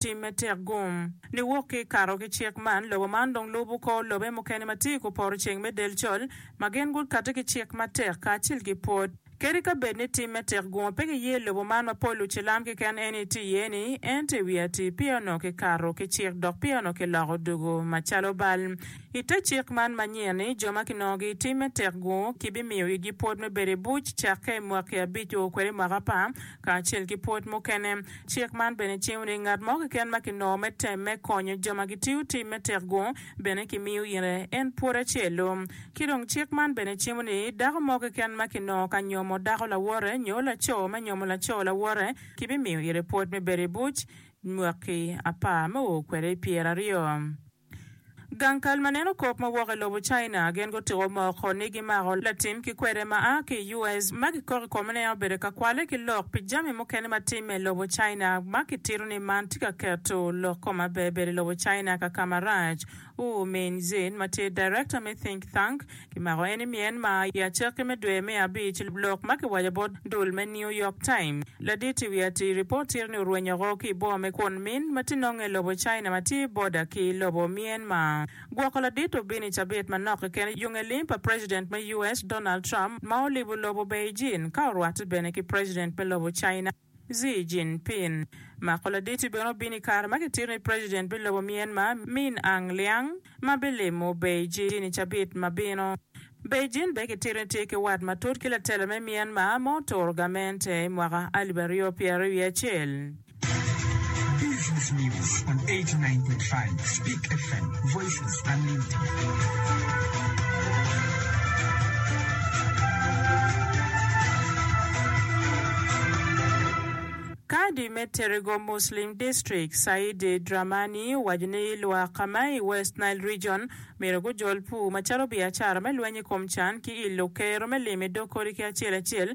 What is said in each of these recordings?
tim me tek gum. Niwok ki kato ki cik man, lobo man dong lubo kor lobe mukene ma tye i ku poto ceng me del col, ma gin gukati ki cik matek kacel ki pwod. Kadi ka bed ni tim me tek gum pe giye i lobo man ma pol lucilam keken eni tye iye ni, ento i wi atir peya onongo ki kato ki cik dok peya onongo ki loko dugu ma calo bal. I te cik man ma nyen ni, jo ma kinongogi i tim me tek gu ki bi miyo igi pwod me bedo i buc cakke i mwaki abic o kwede mwaka pa, Kacel ki pwod mukene, cik man bene cingo ni ngat mo keken ma kinongo me tem me konyo jo ma gitiyo tic me tek-gu bene kimiyo ite en pwod acel-lu. Ki dong cik man bene cimo ni dako mo keken ma kinongo ka nyomo dako lawote nyo laco ma nyomo laco lawote kibimiyo ite pwod me bedo i buc mwaki apar me o kwede i pyeraryo. Gang kal ma neno kop ma wok i lobo China gin gutiko moko ni gimako latim ki kwede ma a ki i US ma gikok i kome ni en obedo ka kwale ki lok pi jami mukene ma timme i lobo China ma kitito ni man tye ka keto lok kom aberber i lobo China kakama rac. Wu Minjin ma tye director me think thank Kimako en i Myanmar i acakki me dwe me abic, lok ma kiwaco bot dul me New York Times. Ladit i wi atir i pol tira-ni orwenyo oko ki i boma me Kwon Min ma tye nonge i lobo China ma tye i boda ki lobo Myanmar. Gwoko ladit obino i cabit manok keken yo nge lim pa President me US Donald Trump ma olibo lobo Beijing ka orwatte bene ki President me lobo China. Xi Jinping mako laditi bene obin i kare ma kitito ni president me lobo Myanmar Min Aung Liang ma bilimo Beijing i cabit ma bino. Beijing bene kitito ni tye ki wat matut ki latela me Myanmar ma oturo gamente i mwaka alip aryo pyer aryo wiye acel. Business News on 89.5 Speak FM, Voices. Kadi me Terrigo Muslim District, Said Dramani owaco ni lwak ma i West Nile Region myero gujol pur macalo biacara me lweny i kom can ki ilo kero me limi dog kodi ki acel acel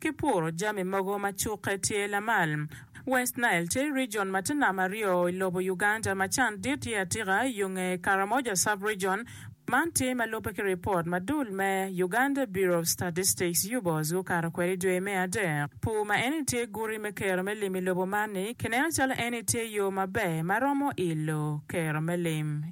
Ki puro jami mogo ma cukke tye lamal. West Nile tye region ma tye nam aryo i lobo Uganda, ma can dit tye atika yo nge Karamoja Sub-region. Man tye ma lubbe ki ripot ma dul me Uganda Bureau of Statistics, UBOS, gukato kwede i dwe me adek. Pur ma eni tye guti me kero me lim i lobo man-ni kineno calo eni tye yo maber ma romo ilo kero me lim.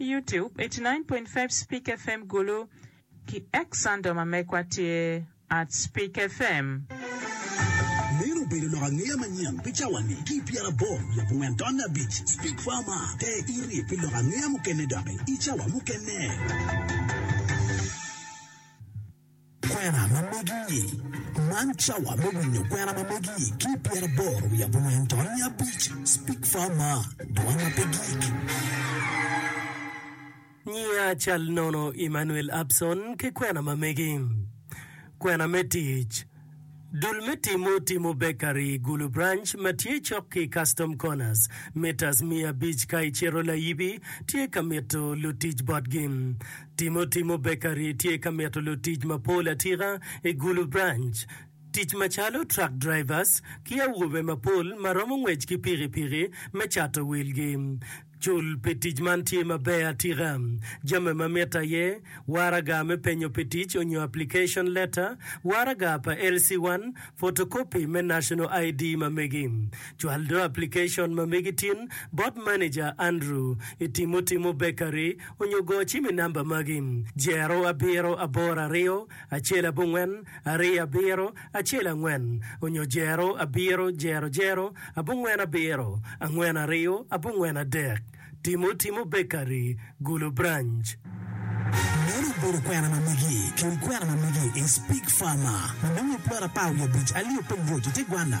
Youtube, eighty nine point five Speak FM Gulu ki Xandom Amekwa tye at Speak FM. Meno obedo lok angeya manyen pi cawa-ni ki i pyeraboro lub ongwen tonne abic. Speak Farmer, Te iri pi lok angeya mukene doki i cawa mukene. Kwena ma megi-ni, Man cawa me winyo kwena ma megi ki i pyeraboro wiye abongwen to niya abic, Speak Far Mar, Dwol ma Pe Gik. Nyiya cal nono Emmanuel Abson ki kwena ma megi. Kwena me tic. Dul me timo timo bekari i Gulu Branch ma tye cok ki Custom Corners, mitas miya abic ka icito layibi, tye ka mito lutic botgi. Timo timo bekari tye ka mito lutic mapol atika i Gulu Branch, tic macalo truck drivers ki awobe mapol ma romo ngwec ki pikipiki me cato wilgi. Cul pi tic man tye maber atika. Jami ma mitte aye, Waraga me penyo pi tic onyo application letter, waraga pa LC1, photocopy me National ID ma megi. Cwal do application ma megi tin bot manager Andrew i Timo Timo Bakery onyo go cim i namba magi, Jero abiro aboro aryo acel abongwen ariyo abiro. acel angwen, onyo jero abiro jero jero abongwen abiro, angwen aryo abongwen adek, timo timo bekari, gulu branch. Meno obedo kwena ma megi. Cul kwena ma megi i Speke Pharma ma nongo i pwod apar wiye abic alio pe ngwec i te gwanna.